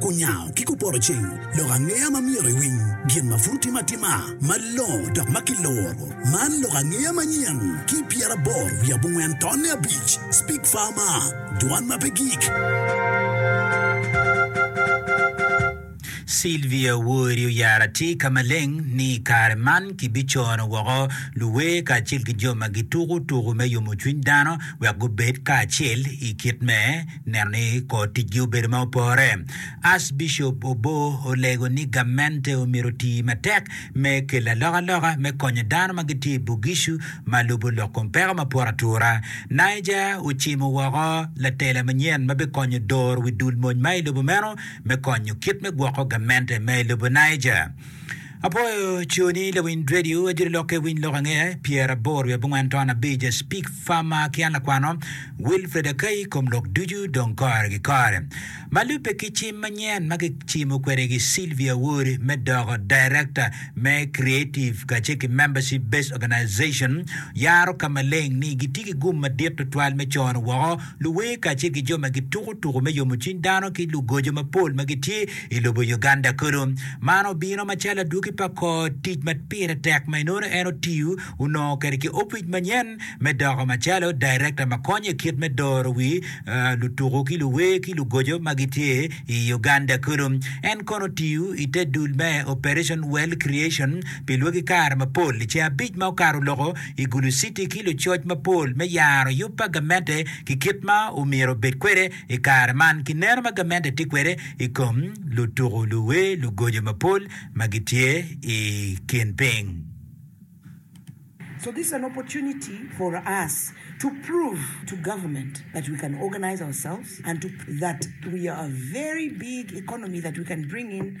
Kunyango ki kuporoceng lok angeya ma myero iwiny gin ma pud otime atima malongo dok ma kiloro. Man lok angeya manyen ki pyeraboro wiye abongwen tonne abic, Speak Farmer, Dwan ma pe gik. Sylvia Wori oyaro atika maleng ni i kare man kibicono woko luwer kacel ki jo ma gituko tuko me yomo cwiny dano wek gubed kacel i kit me Neno ni kor ticgi obedo ma opore, Arcbishop Oboo olego ni gamente omyero oti matek me kelo alokaloka me konyo dano ma gitye i Bugishu ma lubo lok kom peko ma poto atura. Niger ocimo woko latela manyen ma bikonyo doro wi dul mony ma i lobo meno me konyo kit me gwoko gamente ma i lobo Niger. Apwoyo coni lawiny dredio ajiri lokke winy lok ange pyer abor wiye abongwen ton abic a speak farmer ki an lakwano Wilfred Akai kom lok ducu dong kore ki kore malube ki cim manyen ma ki cimo kwede ki Sylvia Awori me doko director me creative kace ki membership based organization yaro ka maleng ni gitye ki gum madit tutwal me cono woko Luwer kacel ki jo ma gituko tuko me yomo cwiny dano ki lugoco mapol ma gitye i lobo Uganda kono. Man obino macalo adwogi pa kor tic ma pire tek ma inongo en otiyo onongo kwede ki opic manyen me doko macalo director ma konyo i kit me doro wi lutuko ki luwer ki lugoco ma gitye i Uganda kono. En kono otiyo i te dul me Operation Wealth Creation pi lwaki kare mapol. I ceng abic ma okato loko, i Gulu City ki lucoc mapol me yaro yub pa gamente ki kit ma omyero obed kwede i kare man ki neno ma gamente tye kwede i kom lutuku, luwer, lugoco mapol ma gitye i kin piny. So this is an opportunity for us to prove to government that we can organize ourselves and to that we are a very big economy that we can bring in.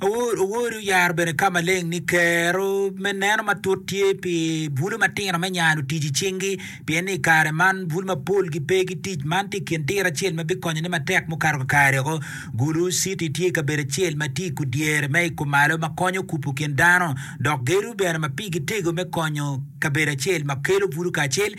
Awor owori oyaro bene ka maleng ni kero me neno matut tye pi bwulu matino me nyano tic i cingi pien ni i kare man bwulu mapol gipe ki tic man tye i kin tira acel ma bikonyone matek mukato kakare woko. Gulu City tye kabedo acel ma tye i kudyere me i kumalo ma konyo kupu kin dano dok gedo bene ma pigi tego me konyo kabedo acel ma kelo bwulu kacel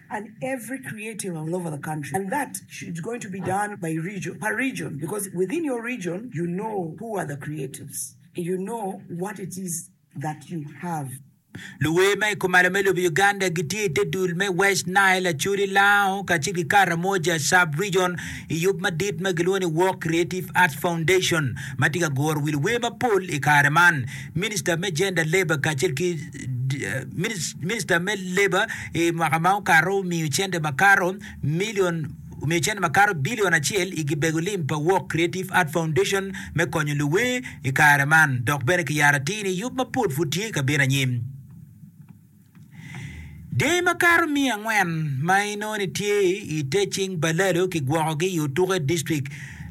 Luwer ma i kumalo me lobo Uganda gitye i te dul me West Nile, Acholi, Lao, kacel ki Karamoja Sub-Region i yub madit ma gilwongo ni Walk Creative Arts Foundation ma tye ka guro wi luwer mapol i kare man. Minista me Gender, Labour kacel ki. Minista me leba i mwaka ma okato omiyo cente makato bilion acel i gibego lim pa Walk Creative Art Foundation me konyo luwer i kare man dok bene kiyaro atir ni yub mapol pud tye ka bino anyim. Dyangi makato miya angwen ma inongo ni tye i te cing pa Lalo kigwokogi i Otuko District.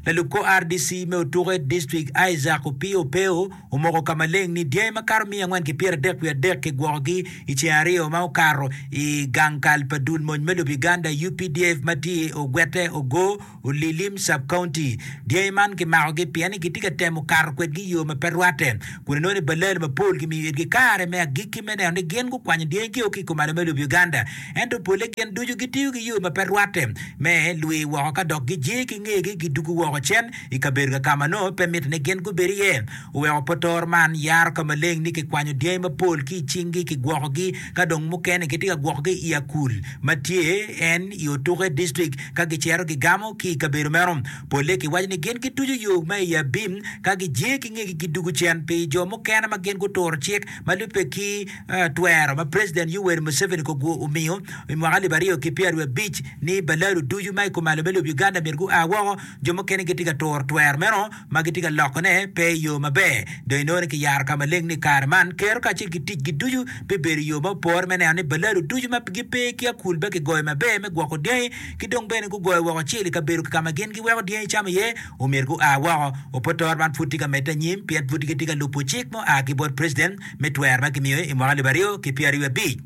Lalub kor RDC me Otuko District Isaac Opio Opeo omoko ka maleng ni dyangi makato miya angwen ki pyeradek wiye adek kigwokogi i ceng aryo ma okato i gang kal pa dul mony me Lub-Uganda, updf, ma tye i Ogwete, Ogo, Olilim Sub-County. Dyangi man kimakogi pien ni gitye ka temo kato kwedgi i yo ma pe rwatte kun inongo ni balal mapol gimiyo itgi kare me agikki me neno ni gin gukwanyo dyangigio ki i komalo me Lub-Uganda. Ento polle gin ducu gitiyo ki yo ma pe rwatte me lwi woko ka dok gijiye ki ngegi gidwogo woko cen i kabedo kaka ma nongo pe mitte ni gin gubed iye. Oweko potor man yaro ka maleng ni kikwanyo dyangi mapol ki i cinggi, kigwokogi ka dong mukene kitye ka gwokogi i Akul ma tye en i Otuke District ka gicito gigamo ki i kabedo meno. Polle kiwaco ni gin gituco yo ma i abim ka gijer ki ngegi gidwogo cen pi jo mukene ma gin guturo cik ma lubbe ki twero ma President Yoweri Museveni Kogwo omiyo i mwaka alip aryo ki pyeraryo abic ni balalo ducu ma i kom alome lobo Uganda myero gua woko Jo mukene gitye ka turo twero meno ma gitye ka lokone pe i yo maber. Dong inongo ni kiyaro ka maleng ni i kare man, kero kacel ki ticgi ducu bibedo i yo ma opore me neno ni balado ducu ma gipe ki akul be kigoyo maber me gwoko dyangi, ki dong bene gugoyo woko cel i kabedo ka ma gin giweko dyangi camo iye. Omyero gua woko. Opotoro man pud tye ka medde anyim pien pud gitye ka lubo cik ma oa ki bot preciden me twero ma kimiyo i mwaka alip aryo ki pyeraryo abic.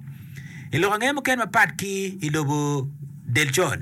I lok ange mukene mapat ki i lobo del col,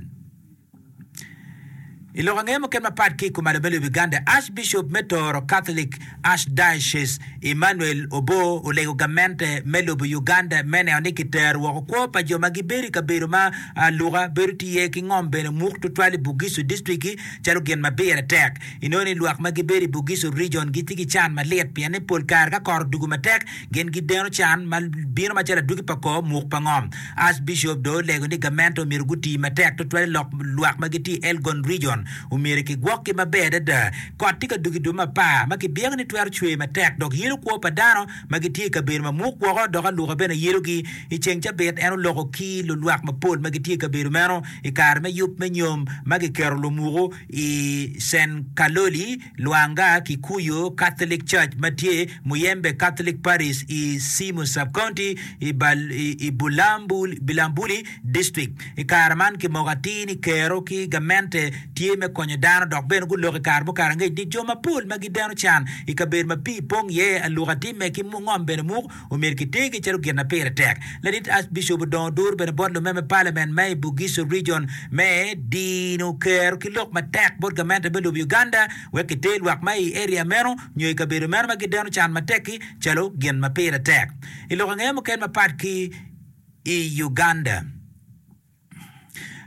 I lok ange mukene mapat ki i kom Alobelwe Biganda, Archbishop me Toro Catholic Archdiocese Emmanuel Obo olego gamente me lobo Uganda me neno ni kitero woko kwo pa jo ma gibedo i kabedo ma luka bedo tye iye ki ngom bene muk tutwal i Bugisu District-ki calo gin ma pire tek. Inongo ni lwak ma gibedo i Bugisu Region gitye ki can malit pien ni pol kare ka kot odugo matek, Gin gideno can ma bino macalo adwogi pa kor muk pa ngom. Archbishop dong olego ni gamente omyero guti matek tutwal i lok lwak ma gitye i Elgon Region. Omyero kigwokgi maber adada. Kot tye ka dok i dwe me apar, ma kibiyagi ni twero cwer matek dok yelo kwo pa dano ma gitye i kabedo mamuk woko, dok aluka bene yelogi. I ceng cabit en oloko ki lulwak mapol ma gitye i kabedo meno i kare me yub me nyom ma giketo lumuku i Cen Kaloli, Lwanga, Kikuyu Catholic Church ma tye Muyembe Catholic Parish i Simu Sub-County i Bulambuli District. I kare man, kimoko atir ni Kero ki gamente tye me konyo dano dok bene guloko i kare mukar angec ni jo mapol ma gideno can i kabedo ma pii pong iye aluka timme ki ngom bene muk. omyero kitegi calo gin ma pire tek. Ladit Archbishop odong odur bene bot lume me Parliament me i Bugisu Region me dino kero ki lok matek bot gamente me lobo Uganda wek kiter lwak ma i area meno nyo i kabedo meno ma gideno can matek-ki calo gin ma pire tek. I lok angeye mukene mapat ki i Uganda.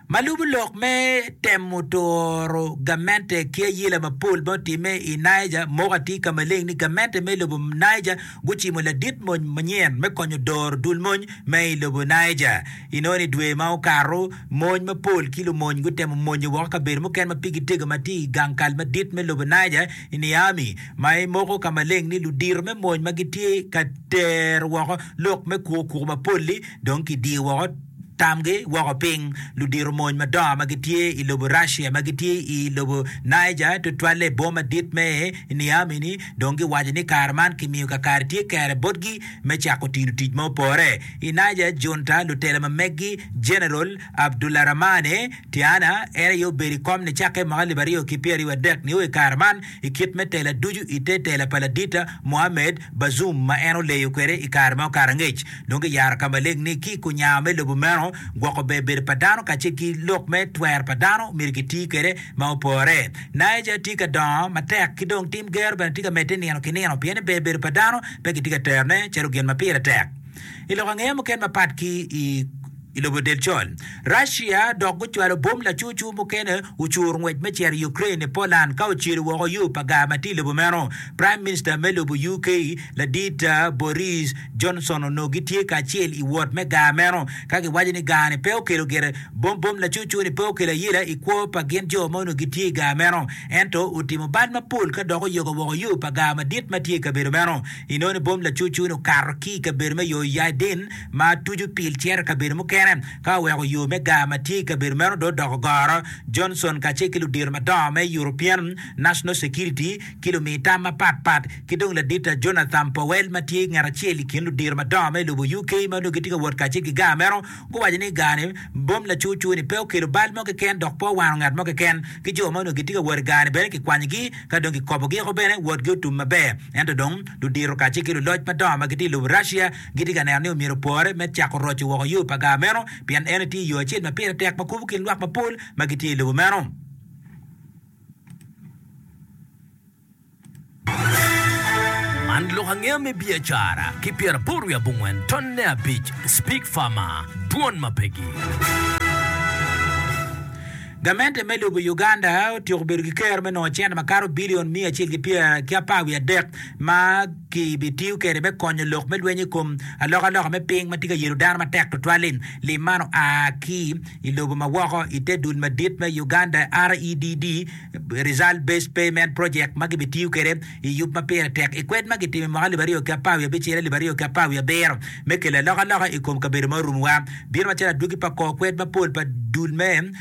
ma lubo lok me temo turo gamente ki ayela mapol ma otimme i Niger moko atir ka maleng ni gamente me lobo Niger gucimo ladit mony manyen me konyo doro dul mony ma i lobo Niger. Inongo ni dwe ma okato, mony mapol ki lumony gutemo monyo woko kabedo mukene ma pigi tego ma tye i gang kal madit me lobo Niger i Niamey, ma i moko ka maleng ni ludito me mony ma gitye ka tero woko lok me kuko kuko mapol-li dong kidiyo woko. Tamgi woko piny. Ludito mony madongo ma gitye i lobo Russia ma gitye i lobo Niger, tutwalle i boma madit me Niamey-ni, dong giwaco ni kare man kimiyo kakare tye kere botgi me cako tino tic ma opore. I Niger junta, lutela ma meggi Jeneral Abdoularamane Tiana, en aye obedo i kom nicakke mwaka alip aryo ki pyeraryo wadek nio i kare man, i kit me tela ducu i te tela pa Ladita Mohamed Bazoum ma en oleyo kwede i kare ma okato angec. Nongo giyaro ka maleng ni ki ku nyawa me lobo meno, gwoko ber bedo pa dano kacel ki lok me twero pa dano myero giti kwede ma opore. Niger tye ka dongo matek ki dong tim gero bene tye ka medde nino ki nino pien ni ber bedo pa dano pe kitye ka terone calo gin ma pire tek. I lok angeya mukene mapat ki i. I lobo del col, Russia dok gucwalo bom lacucu mukene ocur ngwec me cito i Ukraine i Poland ka ocelo woko yo pa gar ma tye i lobo meno. Prime Minister me lobo UK ladit Boris Johnson onongo gitye kacel i wot me gar meno ka giwaco ni gar ni pe okelo gire bom bom lacucu ni pe okelo ayela i kwo pa gin jo ma onongo gitye i gar meno ento otimo bal mapol ka dok oyogo woko yo pa gar madit ma tye i kabedo meno inongo ni bom lacucu ni okato ki i kabedo me Yoiaidin ma tuco pil cito i kabedo mukene. Ka oweko yo me gar ma tye i kabedo meno dong odoko goro, Johnson kacel ki ludito madongo me European National Security ki lumi tam mapat pat ki dong ladita Jonathan Powell ma tye ngat acel i kin ludito madongo me lobo UK ma onongo gitye ka wot kacel ki gar meno guwaco ni gar-ni bom lacurcur ni pe okelo bal mo keken dok pe owano ngat mo keken ki jo ma onongo gitye ka wot i gar-ni bene kikwanyogi ka dong kikobogi oko bene wotgi otum maber ento dong ludito kacel ki luloc madongo ma gitye i lobo Russia gitye ka neno ni omyero opore me cako roco woko yo pa gar meno pien eno tye yo acel ma pire tek ma kubo kin lwak mapol ma gitye i lobo meno. Man lok angeya me biacara ki pyeraboro wiye abongwen tonne abic Speak Farmer, Dwon ma Pegi. Gamente me lobo Uganda otyeko bedo ki ker me nongo cente makato bilion miya acel ki apar wiye adek ma Kibitiyo kwede me konyo lok me lweny i kom alokaloka me piny ma tye ka yelo dano matek tutwal-li. Lim man oa ki i lobo ma woko i te dul madit me Uganda REDD, Result Based Payment Project, ma gibitiyo kwede i yub ma pire tek i kwed ma gitimo i mwaka alip aryo ki apar wiye abicel alip aryo ki apar wiye abiro me kelo alokaloka i kom kabedo ma orumuwa. Bino macalo adwogi pa kor kwed mapol pa dul me